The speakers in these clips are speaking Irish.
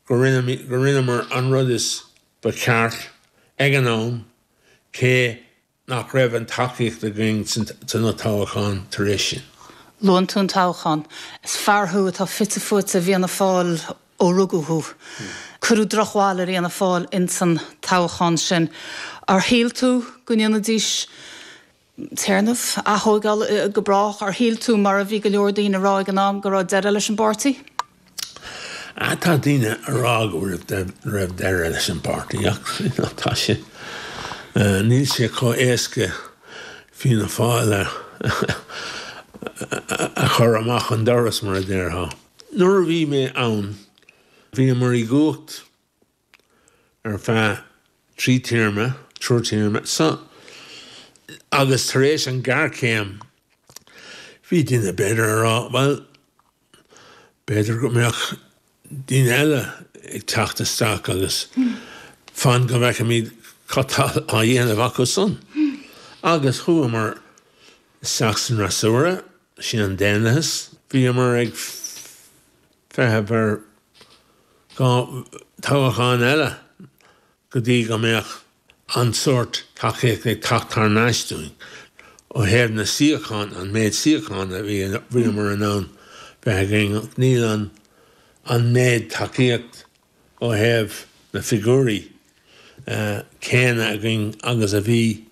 go rinneamar an rud is ba cheart ag an am cé nach raibh an tacaíocht againn sna toghcháin tar éis sin. Luann tú an toghchán. Is fear thú atá fite fuaite i bhFianna Fáil ó rugadh thú. Cuireadh drochbhail ar Fhianna Fáil insan toghchán sin. Ar shíl tú go ndéanfaidís téarnamh, atógáil go brách, ar shíl tú, mar a bhí go leor daoine a rá ag an am, go raibh deireadh leis an bpáirtí? Ah, tá daoine a rá go raibh deireadh leis an bpáirtí ach tá sé. Níl sé chomh éasca Fianna Fáil a a chur amach an doras mar a déarfá. Nuair a bhí mé ann, bhíomar i gcumhacht ar feadh trí téarma, triúr téarma so agus tar éis an géarchéim bhí daoine b'fhéidir a rá bhuel b'fhéidir go mbeadh daoine eile ag teacht isteach agus fan go bhfeicimid cad tá á dhéanamh acu san. Agus chuamar isteach san fhreasúra, sin an daonlathas, bhíomar ag feitheamh ar dhá toghchán eile go dtí go mbeadh an sórt tacaíocht ag teacht thar n-ais dúinn ó thaobh na suíochán, an méid suíochán a bhíomar in ann bheith againn. Níl an méid tacaíocht ó thaobh na figiúirí céanna againn agus a bhí.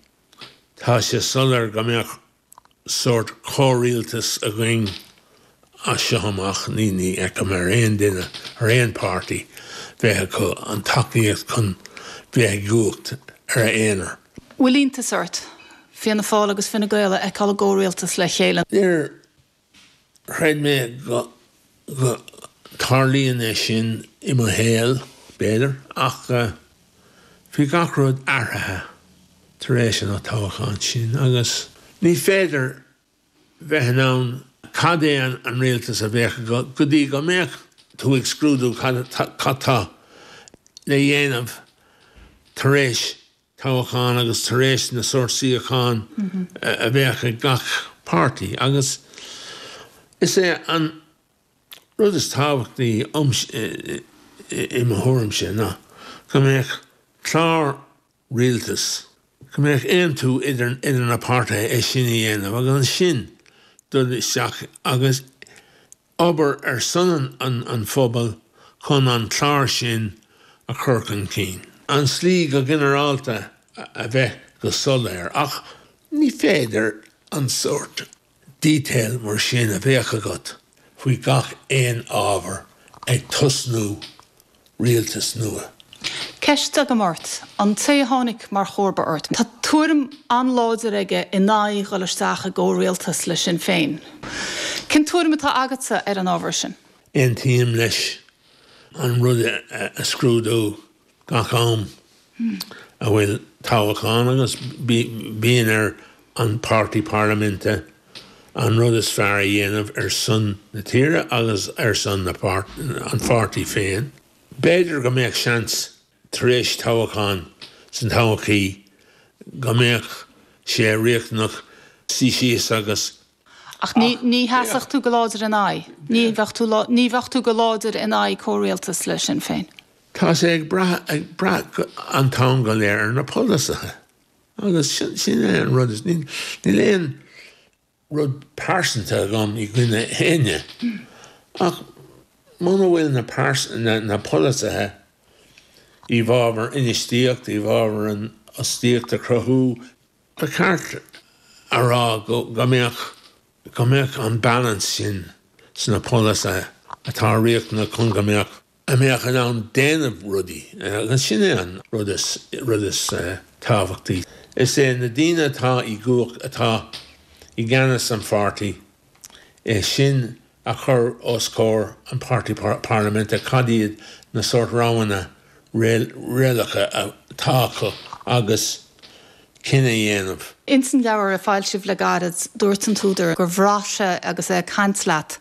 Tá sé soiléir go mbeadh sórt comhrialtas againn as seo amach, ní fheicim ar aon duine, ar aon pháirtí, bheith acu an tacaíocht chun bheith i gcumhacht ar a aonar. Bhfuil iontas ort Fianna Fáil agus Fine Gael a fheiceáil i gcomhrialtas le chéile? Níor chreid mé go dtarlaíonn é sin i mo shaol, b'fhéidir, ach bhí gach rud athraithe tar éis an toghcháin sin agus ní féidir bheith in ann cad é an rialtas a bheadh agat go dtí go mbeadh tú ag scrúdú cad tá le dhéanamh tar éis toghcháin agus tar éis na sórt suíochán a bheadh ag gach páirtí agus is é an rud is tábhachtaí i mo thuairimse ná go mbeadh clár rialtas, go mbeadh aontú idir na páirtithe é sin a dhéanamh agus ansin dul isteach agus obair ar son an phobail chun an clár sin a chur chun cinn. an slí go ginearálta a bheith go soiléir ach ní féidir an sórt detail mar sin a bheadh agat faoi gach aon ábhar ag tosnú rialtas nua. Ceist agam ort, an té a tháinig mar chomharba ort, tá tuairim an-láidir aige in aghaidh dhul isteach i gcomhrialtas le Sinn Féin. Cén tuairim atá agatsa ar an ábhar sin? Aontaím leis an rud a scrúdú gach am. a bhfuil toghachán agus bíonn ar an páirtí parlaiminte an rud is fearr a dhéanamh ar son na tíre agus ar son an pháirtí féin. B'fhéidir go mbeadh seans tar éis toghacháin sa todhchaí go mbeadh sé riachtanach suí síos agus Ach ní sheasfadh tú go láidir ina aghaidh. Ní bheadh tú go láidir in aghaidh comhrialtas le Sinn Féin. Tá sé ag brath an t-am go léir ar na polasaithe agus sin é an rud. Níl aon rud pearsanta agam i gcoinne éinne ach muna bhfuil na polasaithe i bhfabhar infheistíocht, i bhfabhar an fhostaíocht a chruthú, Ba cheart a rá go mbeadh go mbeadh an balance sin insna polasaithe atá riachtanach chun go mbeadh a mbeadh in ann déanamh rudaí agus sin é an rud is tábhachtaí. Is é na daoine atá i gcumhacht atá i gceannas san pháirtí. é sin a chur os comhair an Páirtí Parlaiminte, cad iad na sórt roghanna réalacha atá acu agus cinneadh a dhéanamh. Ins an leabhar a foilsíodh le gairid, dúirt an t-údar gur bhraith sé agus é ag caint leat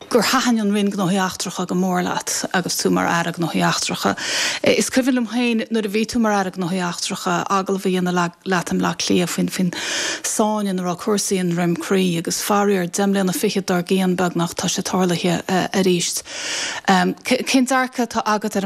gur thaitin an Roinn Gnóthaí Eachtracha go mór leat agus tú mar Aire Gnóthaí Eachtracha. Is cuimhin liom féin nuair a bhí tú mar Aire Gnóthaí Eachtracha agallamh a dhéanamh leat, leat i mBleá Cliath faoin tsáinn ina raibh cúrsaí i nDroim Crí agus faraor deich mbliana fichead dár gcionn beagnach tá sé tarlaithe arís. Cén dearcadh atá agat ar an.